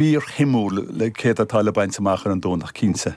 fíorshuimiúil le céard atá le baint amach ar an Domhnach, cinnte.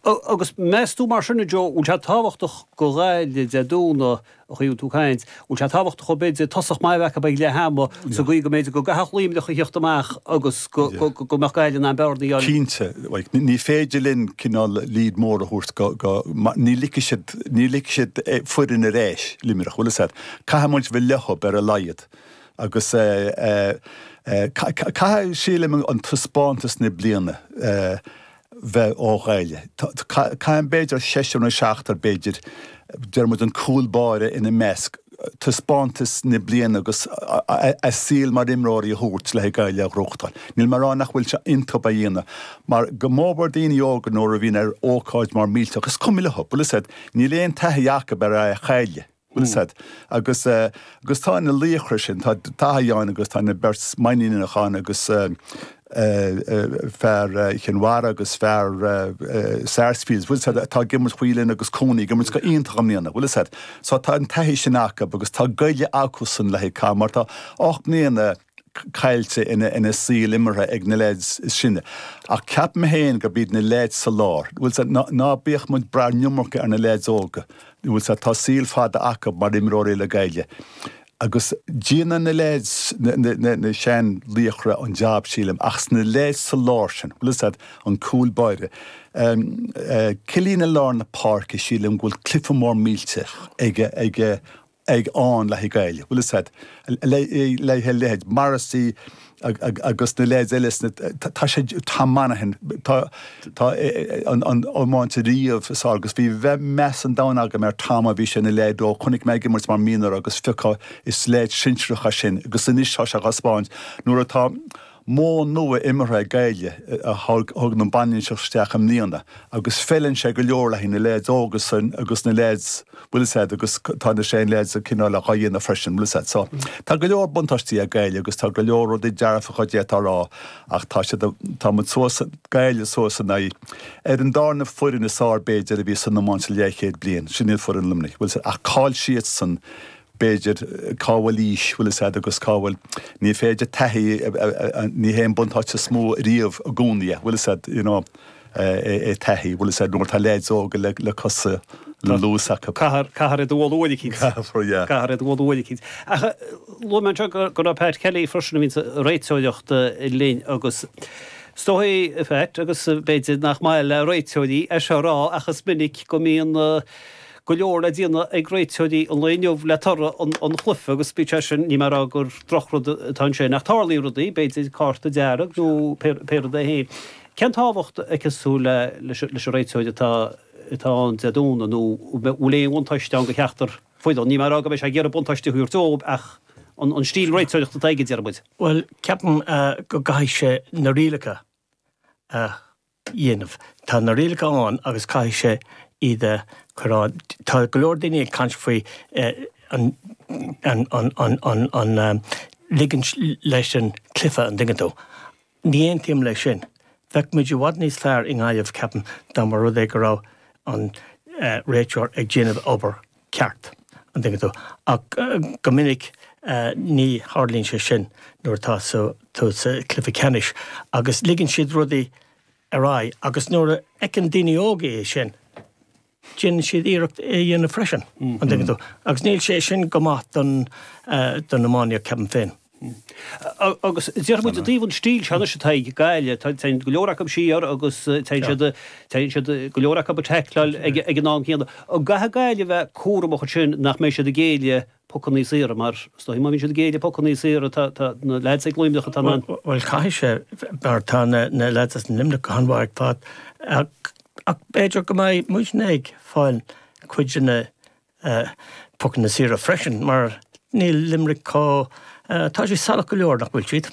Agus meas tú, mar sin, a Joe, bhfuil sé tábhachtach do Ghaillimh de dúnadh, a chaoin tú caint, bhfuil sé tábhachtach dóibh b'fhéidir, tosach maith a bheith acu ag leath ama, sa gcaoi go mb'fhéidir go gcaithfeadh Luimneach a theacht amach agus go mbeadh Gaillimh in ann bearnaí a. Cinnte. Ní féidir linn cineál lead mór a thabhairt go, go, ní ligfidh siad, ní ligfidh siad foireann ar ais, Luimneach, bhfuil fhios a'd, caithfidh muid bheith leothub, ar a laghad. Agus caithfidh, sílim, an taispeántas na bliana bheith ó Ghaillimh. Caithfidh, b'fhéidir, seisear nó seachtar, b'fhéidir, deir muid an cúl báire ina measc, taispeántas na bliana agus a saol mar imreoirí a thabhairt le haghaidh Gaillimh a ghnóthachtáil. Níl mé ag rá nach bhfuil sé iontub a dhéanamh, mar go mórmhór daoine óga nuair a bhíonn ar ócáid mhór mhillteach, is cuma leo, bhfuil fhios a'd, níl aon taithí acub ar a chailleadh. bhfuil fhios a'd. Agus tá na laochra sin, tá taithí ann agus tá na beirt Mainníneach ann agus fear Chinn Mhara agus fear Sarsfields, bhfuil fhios a'd, atá ag imirt, Whelan agus Cooney ag imirt go iontach i mbliana, bhfuil fhios a'd. So tá an taithí sin acu agus tá goile acusan le haghaidh cath mar tá ocht mbliana, caillte ina saol imeartha ag na leaids is sine. Ach ceapaim féin gurb iad na leaids sa lár, bhfuil fhios a'd. Ná bíodh muid brath an iomarca ar na leaids óga, bhfuil fhios a'd. Tá saol fada acu mar imreoirí le Gaillimh. Agus déanann na leaids, na sean laochra, an jab sílim. Ach is na leaids sa lár sin, bhfuil fhios a'd, an cúl báire, Killeen i lár na páirce, sílim go bhfuil cluiche mór millteach ag ag ann le haghaidh Gaillimh, bhfuil 'fhios a'd, a leithéid Morrissey agus na leaids eile sna, tá sé, Tom Monaghan, tá, tá an iomáint riamh is fhearr agus bhí meas an domhain agam ar Tom ó bhí sé ina leaid óg, chonaic mé ag imirt mar mhionúr agus phiocadh, is leaids sinsearacha sin agus anois tá sé á thaispeáint nuair atá, Modh nua imeartha ag Gaillimh a thug an bhainistíocht isteach i mbliana agus feileann sé go leor le haghaidh na leaids óga sin agus na leaids, bhfuil fhios a'd, agus tá na sean leaids cineál dhá dhéanamh freisin, bhfuil fhios a'd. So, tá go leor buntáistí ag Gaillimh agus tá go leor rudaí dearfacha de atá rá ach tá siad, tá muid suas, Gaillimh suas in aghaidh, ar an darna foireann is fhearr b'fhéidir a bhí san iomáint le leathchéad bliain, sin iad foireann Luimnigh, bhfuil fhios a'd, ach cá'il siadsan b'fhéidir, cá bhfuil aois, bhfuil fhios a'd, agus cá bhfuil, ní féidir taithí, ní hé an buntáiste is mó riamh i gcónaí é, bhfuil fhios a'd, you know, é taithí, bhfuil fhios a'd, nuair atá leaids óga le, le cosa, le luas acu. Caithfear, caithfear iad a bhualadh uair eicínt. Caithfear, yeah. Caithfear iad a bhualadh uair eicínt. Ach luaigh mé anseo go raibh Pat Kelly freisin a bhíonn sa réiteoireacht linn agus is dóigh, a Phat, agus b'fhéidir nach maith le réiteoirí é seo a rá ach is minic go mbíonn, go leor le déanamh ag réiteoirí an lae inniu le toradh an chluife agus bíodh sé sin, níl mé ag rá gur drochrud atá ansin ach tarlaíonn rudaí, b'fhéidir cárta dearg nó péire dó féin. Cén tábhacht a cheapas tú le leis an réiteoir atá atá ann Dé Domhnaigh nó an bhfuil aon bhuntáiste ann do cheachtar foireann, níl mé ag rá go mbeidh sé ag iarraidh buntáiste a thabhairt dóibh ach an stíl réiteoireacht atá aige, deir muid. Bhuel, ceapaim go gcaithfidh sé na rialacha a. dhéanamh. Tá na rialacha ann agus caithfidh sé iad a chur ann. Tá go leor daoine ag caint faoi an ligint leis an chluiche, an dtuigeann tú. Ní aontaím leis sin. Bheadh muid i bhfad níos fearr i nGaillimh, ceapaim, dá mba rud é go raibh an réiteoir ag déanamh obair cheart, an dtuigeann tú, ach go minic ní tharlaíonn sé sin nuair atá tú sa chluiche ceannais agus ligeann siad rudaí ar aghaidh agus nuair a fheiceann daoine óga é sin, déanann siad iarracht é a dhéanamh freisin, an dtuigeann tú, agus níl sé sin go maith don iománaíocht, ceapaim féin. Agus déarfaidh muid i dtaobh an stíl seo anois atá ag Gaillimh, téann go leor acu siar agus téann siad, téann siad, go leor acu ag teicleáil ag an am céanna. An gcaithfidh Gaillimh a bheith cúramach ansin nach mbeidh siad ag géilleadh pocanna saora mar, is dóichí, má bhíonn siad ag géilleadh pocanna saora, tá, tá na leaids ag Luimneach atá in ann. Bhuel, caithfidh sé, mar tá na leaids as Luimneach go han-mhaith ag fáil ach, ach b'fhéidir go mbeidh muidne ag fáil cuid de na Pocanna saora freisin, mar níl Limerick chomh, tá siad salach go leor, nach bhfuil siad?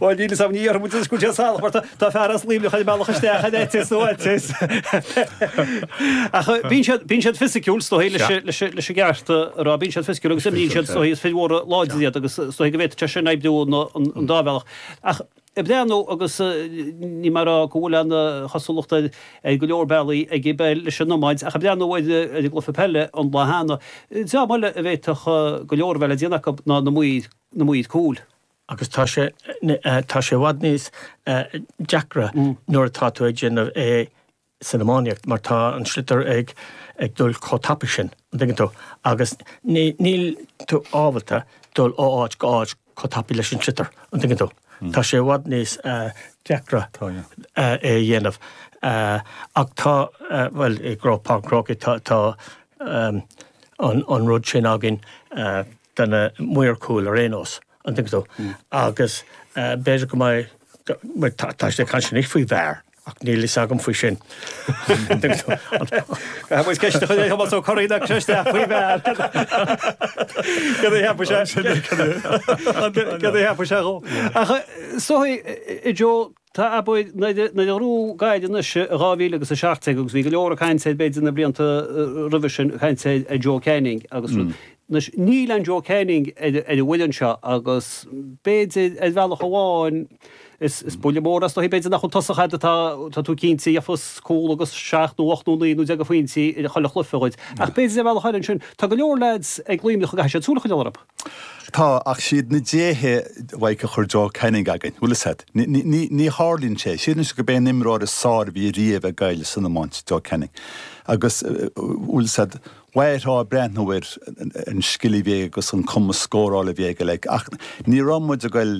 Bhuel, níl fhios agam, ní dhéarfaidh muide go bhfuil siad salach, mar tá fear as Luimneach ag bealach isteach in eitias nó eitias. Ach bíonn siad, bíonn siad fisiciúil, is dóichí, leis, leis an gceart a rá, bíonn siad fisiciúil agus imríonn siad, is dóichí, is fir mhóra láidre iad agus is dóichí go bhféadfaidh sé sin oibriú ar an dá bhealach. Ach. ag breathnú agus níl mé ag rá go bhfuil aon chosúlacht ar go leor bealaí ag an bpeil leis an iomáint ach ag breathnú ar an gcluiche peile an lá cheana. Dream eile a bhféadfadh go leor a bheith le déanamh acu ná na maoir cúil. Agus tá sé tá sé i bhfad níos deacra nuair atá tú ag déanamh é. san iománaíocht mar tá an sliotar ag dul chomh tapaidh sin, an dtuigeann tú, agus níl tú ábalta dul ó áit go áit chomh tapaidh leis an sliotar, an dtuigeann tú. Tá sé i bhfad níos deacra é a dhéanamh ach tá, bhuel, i gCroke Park, Páirc an Chrócaigh, tá an rud sin againn do na maoir chúil ar aon nós, an dtuigeann tú, agus b'fhéidir go mbeidh, tá siad ag caint anois faoi VAR. Ach níl fhios agam faoi sin. Bhuel, ceist a chuir é Thomás Ó Curraoin ag Cristea faoi bhear. Cad a cheapadh sé? Sin é, cad é? Cad a cheapadh sé dhó? Ach soithí, Joe, tá ab fhearr ná idir ná idir rún gairid anois i 2017 agus bhí go leor ag caint b'fhéidir na blianta roimhe sin ag caint ar ar Joe Canning agus rud. Anois, níl aon Joe Canning ar ar an bhfoireann seo agus b'fhéidir ar bhealach amháin, Is buille mór as do shuí, b'fhéidir nach bhfuil tosaí a'd atá tú cinnte, a fhaigheas cúl agus seacht nó ocht nó naoi nó deich de phointí ar chuile chluife dhuit. Ach b'fhéidir ar bhealach eile ansin, tá go leor leaids ag Luimneach a gcaithfidh siad súil a choinneáil orthu. Tá, ach siad na déithe féin a chuir Joe Canning againn, bhfuil 'fhios a'd. Ní tharlaíonn sé. Sílim anois gurb é an imreoir is fearr a bhí riamh ag Gaillimh san iomáint, Joe Canning. Agus, bhfuil 'fhios a'd, mhairfeá ag breathnú ar an scil a bhí aige agus an cumas scórála a bhí aige like. Ach ní raibh muid ag goil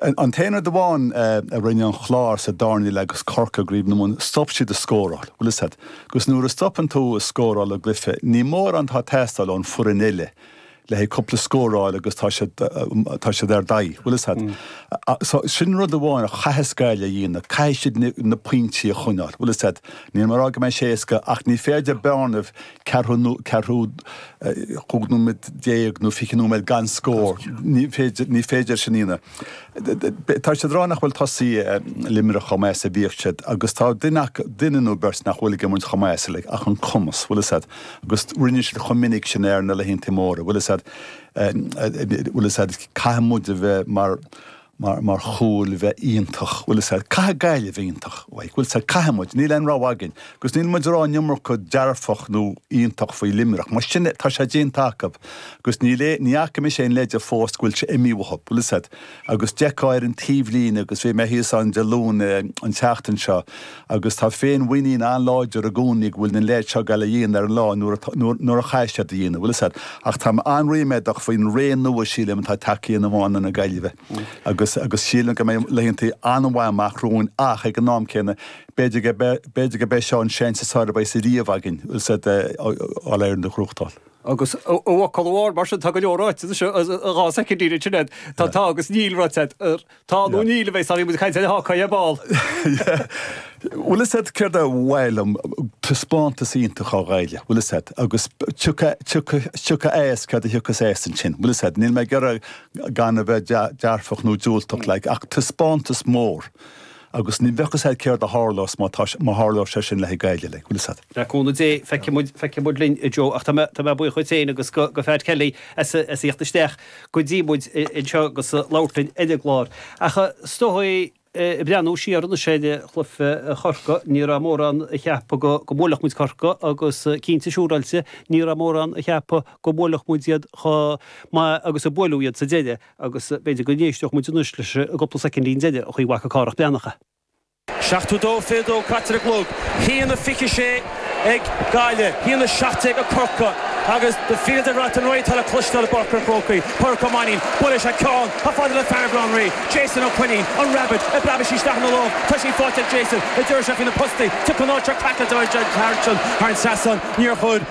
An t-aon rud amháin a rinne an Clár sa darna leath agus Corcaigh i gCraobh na Mumhan stop siad a scóráil. Bhfuil 'fhios a'd, agus nuair a stopann tú a scóráil i gcluiche, níl mórán atá ag teastáil ón foireann eile, le haghaidh cúpla scór a fháil agus tá siad, tá siad ardaithe. Bhfuil 'fhios a'd, so sin rud amháin a chaithfeas Gaillimh a dhéanamh, caithfidh siad na pointí a choinneáil. Bhfuil 'fhios a'd, níl mé a' rá go mbeidh sé éasca ach ní féidir bearnaí ceathrú, ceathrú, 15 nóiméad nó 20 nóiméad gan scór. Ní féidir, ní féidir sin a dhéanamh. Tá siad ag rá nach bhfuil tosaithe Luimnigh chomh maith is a bhíodh siad agus tá duine, duine nó beirt nach bhfuil ag imirt chomh maith is uilig ach an cumas, bhfuil 'fhios a'd, agus rinne siad chomh minic sin é ar na laethanta móra, bhfuil 'fhios a'd, bhfuil 'fhios a'd, caithfidh muid a bheith mar, mar, mar chúil bheith iontach, bhfuil 'fhios a'd, caithfidh Gaillimh bheith iontach, ah, bhfuil 'fhios a'd, caithfidh muid, níl aon rogha againn, agus níl muid ag rá an iomarca dearfach nó iontach faoi Luimneach, mar sin é, tá sé déanta acu, agus níl aon, ní fhaca mise aon leide fós go bhfuil sé imithe uathu, bhfuil 'fhios a'd, agus d'fheicfeá ar an taobhlíne agus bhí mé thíos ann Dé Luain, an tseachtain seo, Agus tá féinmhuinín an-láidir i gcónaí go bhfuil na leaids seo ag goil á dhéanamh ar an lá nuair atá, nuair, nuair a chaithfidh siad a dhéanamh, bhfuil 'fhios a'd. Ach táim an-ríméadach faoin ré nua, sílim, atá tagtha in iomáint na Gaillimhe. Agus, agus sílim go mbeidh laethanta an-mhaith amach romhainn ach, ag an am céanna, b'fhéidir go, b'fhéidir gurb é seo an seans is fearr a bheas ariamh againn, bhfuil 'fhios a'd, All Ireland a ghnóthachtáil. Agus i bhfocal amháin, mar sin, tá go leor ráite, is ea, dhá soicind, ní rin sin é. Tá, tá agus níl ráite. Tá, nó níl, a bheidh, sorry, muid ag caint ar an Hawkeye ar ball. Bhfuil 'fhios a'd, céard ba mhaith liom, taispeántas iontach ó Ghaillimh, bhfuil 'fhios a'd, agus tiocfaidh as céard a thiocfas as ansin, bhfuil 'fhios a'd. Níl mé ag iarraidh gan a bheith dearfach nó diúltach, like, ach taispeántas mór agus ní bheadh a fhios agat céard a tharlós má tá, má tharlós sé sin le haghaidh Gaillimh, like, bhfuil 'fhios a'd. Le cúnamh Dé, feicfidh muid, feicfidh muid linn, a Joe, ach tá mé, tá mé buíoch duit féin agus go, go Fearghal Kelly as a, as a theacht isteach. go dtí muid anseo agus labhairt linn ar an gclár. Ach is dóigh, ag breathnú siar anois ar chluiche Chorcaí, ní raibh mórán a cheap go mbuailfeadh muid Corcaigh agus cinnte siúráilte ní raibh mórán a cheap go mbuailfeadh muid iad chomh maith agus a buaileadh iad sa deireadh agus b'fhéidir go n-éisteodh muid anois leis an gcúpla soicindín deireanach a bhfaca Cárthach Breathnach a. 72 fiú dó caite ar an gclog, a haon 26 ag Gaillimh, a haon 17 ag Corcaigh agus The Fields of Athenry atá le cloisteáil i bPáirc an Chrócaigh, Pádraic Ó Mainín, buaileann sé an ceann chomh fada le Fairview Rí, Jason Ó Floinn, an Rabbit, ag preabadh isteach ina lán, tá sí faighte ag Jason, i dtreo sé faoi na postaí, tiocfaidh an áit seo caite dóibh thar an trasnán, níor chuir.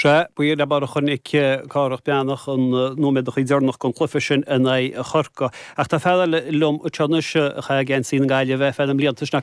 Sea, b'in é an bealach a chonaic Cárthach Breathnach na nóiméadachaí deireanacha den chluiche sin in aghaidh Chorcaí. Ach tá fear eile liom anseo anois a chaith geansaí na Gaillimhe ar feadh na mblianta, sin é